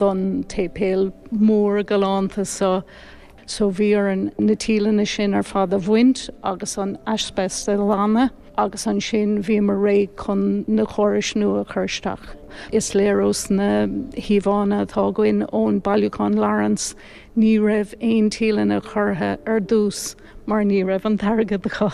don tséipéal mór galánta so. So bhí orainn na tíleanna sin ar fad a bhaint agus an aispeist a ghlanadh agus ansin bhíomar réidh chun na córais nua a chur isteach. Is léir ós na híomhánna atá againn ón Bailiúchán Lawrence ní raibh aon tíleanna curtha ar dtús mar ní raibh an t-airgead acu.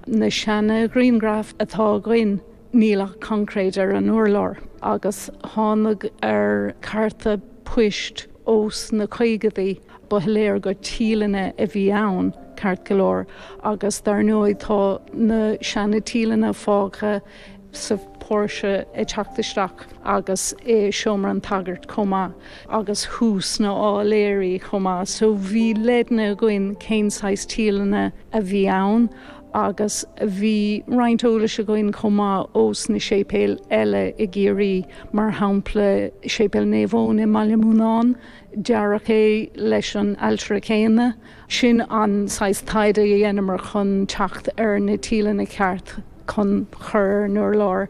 Na seana-ghrianghraif atá againn níl ach concréid ar an urlár agus thánag ar cárta poist ós na caogadaí, ba shoiléir gur tíleanna a bhí ann ceart go leor agus dar ndóigh tá na seana tíleanna fágtha sa póirse ag teacht isteach agus i seomra an tsagairt chomh maith agus thuas na áiléirí chomh maith so bhí leideanna againn cén saghas tíleanna a bhí ann. agus bhí roinnt eolais againn chomh maith ós na séipéil eile i gCiarraí, mar shampla Séipéal Naomh Eoin i mBaile an Bhuinneánaigh, dearadh é leis an ailtire céanna. Sin an saghas taighde a dheineamar chun teacht ar na tíleanna ceart chun chur ar an urlár,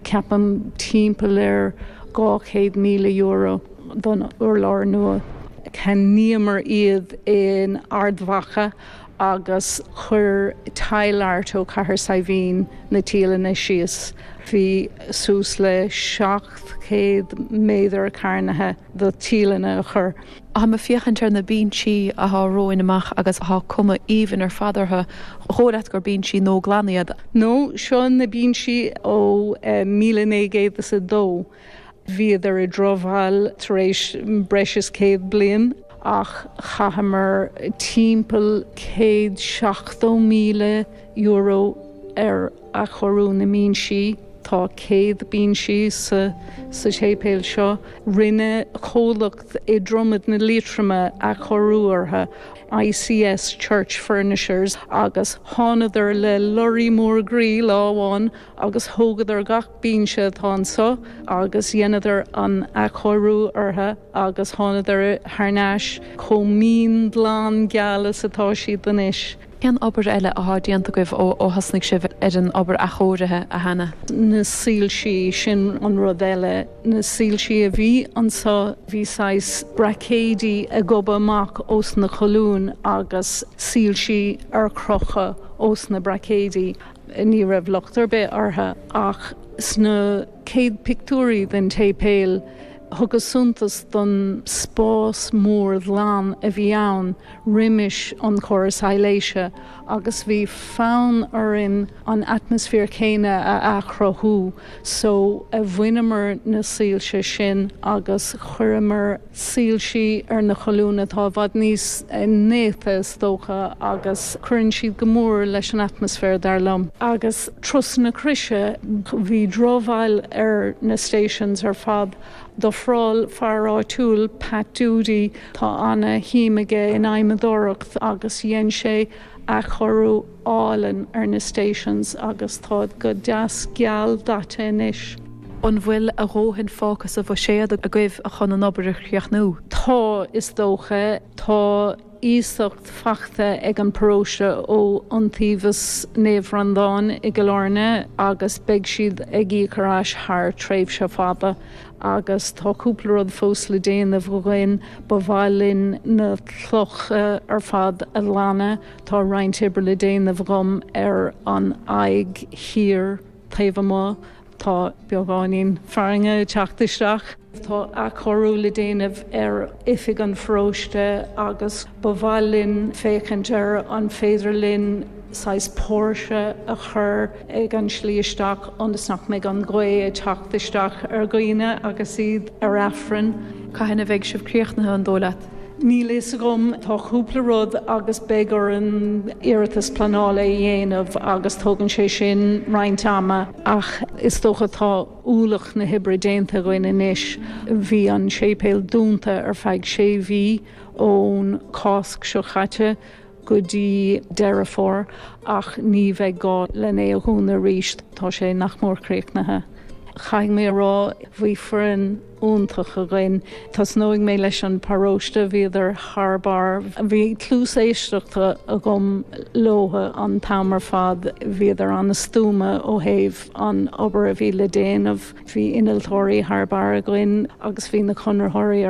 ceapaim timpeall ar €200,000 don urlár nua. Cheannaíomar iad in Ard Mhacha agus chuir Tile Art ó Cathair Saidhbhín na tíleanna síos. Bhí suas le 700 méadar cearnaithe do tíleanna a chur. Tháim ag féachaint ar na binsí athá romhainn amach agus athá cuma aoibhinn ar fad orthu, dhóigh leat gur binsí nua glan iad. No, seo na binsí ó 1902. Bhíodar i ndrochbhail tar éis breis is céad bliain. Ach chaitheamar timpeall céad seachtó míle euro ar athchóiriú na mbinsí. Tá céad binsí sa séipéal seo. Rinne comhlacht i Dromad na Liatroma athchóiriú orthu, ICS Church Furnishers, agus thánadar le lorraí mór groí lá amháin agus thógadar gach binse atá anseo agus dheineadar an athchóiriú orthu agus thánadar thar n-ais chomh mín, glan, geal is atá siad anois. Cén obair eile athá déanta agaibh ó thosnaigh sibh ar an obair athchóirithe, a Hannah? Na soilsí, sin an rud eile. Na soilsí a bhí anseo, bhí saghas braicéidí ag gobadh amach ós na colúin agus soilsí ar crochadh ós na braicéidí. Ní raibh locht ar bith orthu, ach sna céad pictiúirí den tséipéal, thugamar suntas don spás mór ghlan a bhí ann roimis an chóras soilse, agus bhí fonn orainn an atmaisféar céanna a athchruthú, so bhaineamar na soilse sin agus chuireamar soilse ar na colúin atá i bhfad níos néata is dócha agus cuireann siad go mór leis an atmaisféar dar liom. Agus turas na croise, bhí drochbhail ar na stations ar fad. D'ofráil fear áitiúil, Pat Doody, tá ana-shuim aige in adhmadóireacht agus dhein sé athchóiriú, álainn ar na stations agus táid go deas geal daite anois. An bhfuil a dhóthain fágtha sa bhuiséad agaibh chun an obair a chríochnú? Tá, is dócha. Tá iasacht faighte ag an bparóiste ó Iontaobhas Naomh Bhreandáin i gCill Áirne agus beidh siad ag íoc ar ais thar tréimhse fada. Agus tá cúpla rud fós le déanamh againn. Ba mhaith linn na clocha ar fad a ghlanadh. Tá roinnt oibre le déanamh agam ar an aghaidh thiar taobh amuigh, tá beagáinín farrainge ag teacht isteach. Tá athchóiriú le déanamh ar oifig an pharóiste agus ba mhaith linn féachaint ar an féidir linn saghas póirse a chur ag an tslí isteach ionas nach mbeidh an ghaoth ag teacht isteach ar dhaoine agus iad ar aifreann. Cathain a bheidh sibh críochnaithe, an dóigh leat? Níl a fhios agam, tá cúpla rud agus beidh orainn iarratas pleanála a dhéanamh agus tógann sé sin roinnt ama ach is dócha tá ualach na hoibre déanta againn anois. Bhí an séipéal dúnta ar feadh sé mhí, ón Cásc seo chaite go dtí Deireadh Fómhair, ach ní bheidh gá lena dhúnadh arís, tá sé nach mór críochnaithe. Caithfidh mé a rá, bhí foireann. iontach againn. Tosnóidh mé leis an paróiste, bhíodar thar barr, bhí cluas éisteachta agam leotha an t-am ar fad, bhíodar an-stuama ó thaobh an obair a bhí le déanamh, bhí innealtóirí thar barr againn agus bhí na conraitheoirí ar.